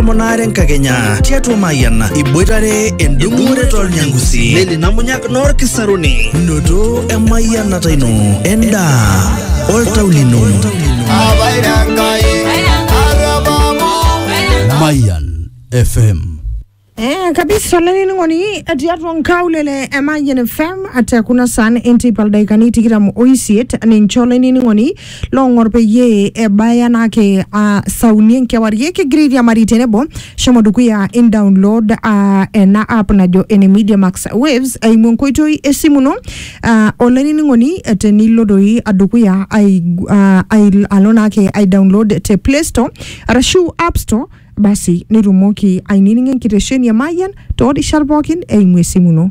tomon aare enkakenya tiatua Mayian iboitare endung'ore tolnyangusi neli namunyak noorkisaruni noto emayianata ino endaa oltau lino Mayan FM. Eh, kabisa olaining'oni tiatua nkaulele e Mayian FM ate kuna saan enteipa ildakikani tikitam oisiet ninche olaining'oni loong'or peyie ebaya naake ah, sauni enkewarie kigira airiamari tenebo shomo dukuya in download ah, ena app najo ene media max waves eimu enkoitoi esimu ino ah, olainining'oni eh, tenilo doi dukuya ai, ah, ai, alo naake ai download te play store arashu app store basi nitumoki ainining'o enkitesheni e mayian toorishat pookin eimu esimu ino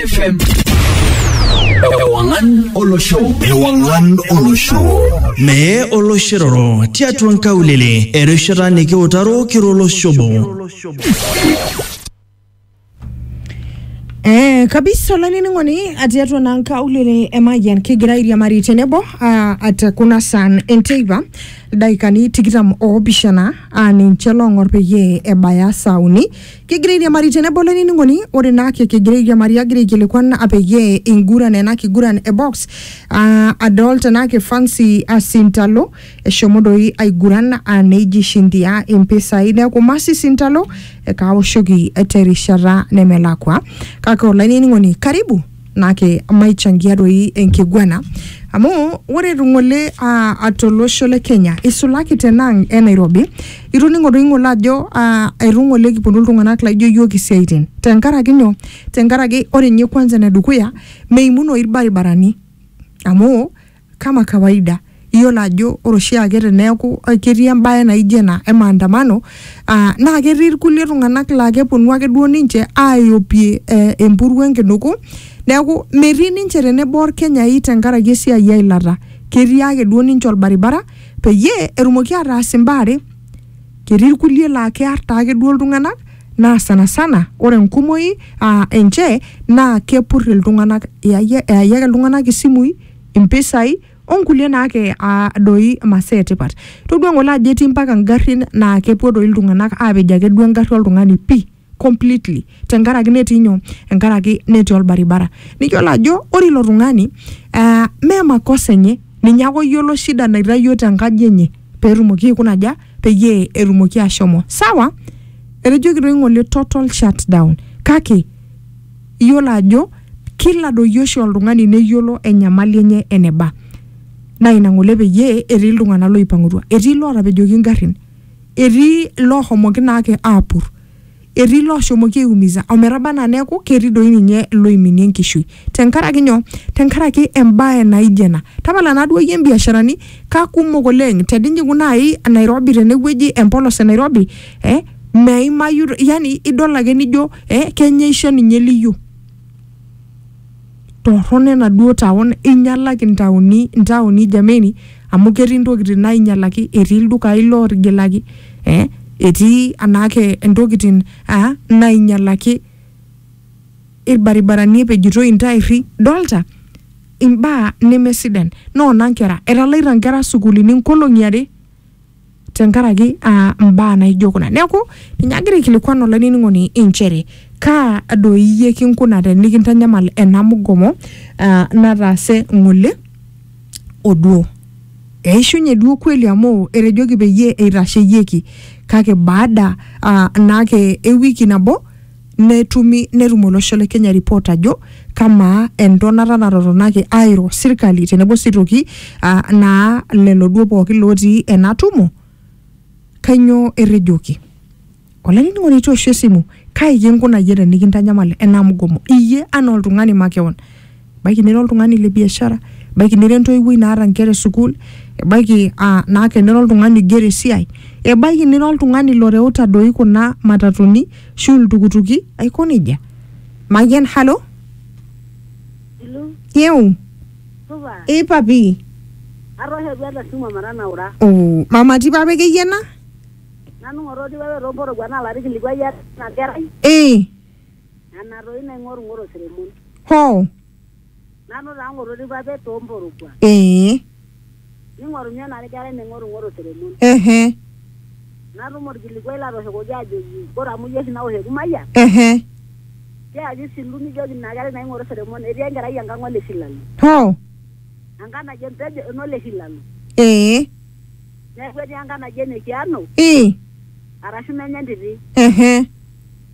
FM. Ewangan Olosho. Ewangan Olosho. Mee oloshiroro tiatua nkaulele erishata nikiutaro kiro oloshobo. Eh, kabisa olainining'oni atii atua naa nkaulele emayian kigira airiamari tenebo ah, at kuna saan enteipa ildaikani tikitam oopishana aa ninche loong'or peyie ebaya saa uni Kegira airiamari tenebo olainining'oni, ore naa ake kigira airiamari agira aikilikuan peyie inguran ena kiguran e box aa adol tenaa ke Fancy Asintalo eshomo doi aiguran aa neija ishindia impisai neeku Mercy Sintalo ekaawoshoki terishata nemelakua. Kake olainining'oni karibu. nake maichangia doi enkiguana amu ore ng'ole ah, atolosho le Kenya isulaki tenang e Nairobi itoning'o doi ng'ole ajo ah, etu ng'ole kiponu iltung'anak laijo yiok isiaitin tenkaraki nyoo tenkaraki ore ninye kwanza enedukuya meimunoyu irbaribarani amu Kama kawaida, iyiolo ajo ore oshiake teneeku ketii embae naijo ena e maandamano aa naa ketii irkulie tung'anak laa keponu ake duo ninche aaiopie eh empuruo enkinuku. Neeku metii ninche tenebo orkenyai tenkaraki esiai e ilata. Ketii ake duo ninche orbaribara peyie etumoki ataas imbaa are, ketii irkulie laa kear taake duo iltung'anak naa sana sana ore enkumoi aa enche naa kepur iltung'anak, eyae ake iltung'anak isimui impisai onkulie naake aa doi masaa etipat. Todua ng'ole ajo etii mpaka ngarrin naa kepuo doi iltung'anak aapej ake duo engarri oltung'ani pii completely tenkaraki netii nyoo, enkaraki netii olbaribara. Niyolo ajo ore ilo tung'ani aa mee makosa enye, ninye ake oyolo shida naitayuo tenkaji enye peetumoki aikuna aja, peyie etumoki ashomo. Sawa? Etejoki doi ng'ole total shutdown kake, Iyiolo ajo kila adoyio oshi oltung'ani neyiolo enyamali enye eneba. Naa ina ng'ole peyie etii iltung'ana looipang'utua. Etii lootapejoki ingarrin, etii loohomoki naake aapur, etii looshomoki aiumiza ometaba anaa neaku ketii doi ninye looiminie enkishui. Tenkaraki nyoo? Tenkaraki embae naijo ena. Tapala naaduo iyie mbiasharani kakumok oleng' teninyikuu nai Nairobi tenewueji empolos e Nairobi eh, meimayu yani idol ake nijo eh, kenyaisho ninye liyo torrono enaduo taon inyalaki ntaoni ntaoni jameni amu ketii ntokitin nainyalaki etii ildukai lootigilaki eh, etii anaake ntokitin ah, nainyalaki ilbaribarani epejitoi intairri dolta imbaa nemesidan noona nkera etalaita nkera sukuulini nkolong'i are tenkaraki aa mbaa naijo kuna neeku ninye agira aikilikuan olainining'oni inchere kaa doi iyie kinkuna tenikintanyamal ena mugomo aa nataase ng'ole oduo eishunye duo kweli amu etejoki peyie eitasheyieki kake baada aa naake ewiki nabo netumi netum olosho le Kenya report ajo kamaa entonata natotonaki airo sirkali tenebo sii toki ah, naa lelo duo pookin lootii ena tumo kainyoo etejoki olainining'oni itu eosh esimu kai kinkunayie tenikintanyamal ena mgomo iyie anaa oltung'ani makeon ebaiki nira oltung'ani le biashara ebaiki nira entoiwuoi naata inkera e sukuul ebaiki aa naa kenira oltung'ani oigero esiai ebaiki nira oltung'ani loreuta doi kuna matatuni ashu iltukutuki aiko nejia mayian halo Hello, yeu supa. ei papi Atoosho duo ele simu omatanaura. oh, mama ti papi akeyie ena Nanu ng'oto tipae too mporowuan naalo atikilikuai ena kerai. ee Nana toi naing'orung'oro seremon. Hoo. Nanu taa ng'ototi papet too mporogua. Ee. Ning'orunye nanu kerai naing'orung'oro seremon. Ehe. Natum olkilikuai latooshokoki ajoki ore amu iyie oshi naosh ekumayian. Ehe. Tiaaki isilu nijoki ina kerai naing'oro seremon etii enkerai enkang ole Shilalo. Hoo. Enkang naji empejo enole Shilalo. Ee. Neeku etii enkang naji ene Kiano. Ii. Arashu menye entiti. Ehe.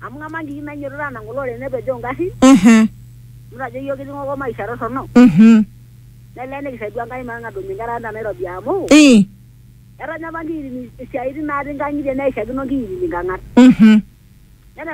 Amu ng'amaa nkiki nainyototo anang kulo oreren nepejoo ngarrin. Ehe. Amu tajo iyiook kitii ng'okoo maisha torrono. Mhm. Nelee nikisaidia Enkai matang'adunye nkera ang te Nairobi amu. Ii. Etanya apa nkiyitini isiaaitin naati nkang'itie neishakino nkiyitini nkang'at. Mhm. Nene.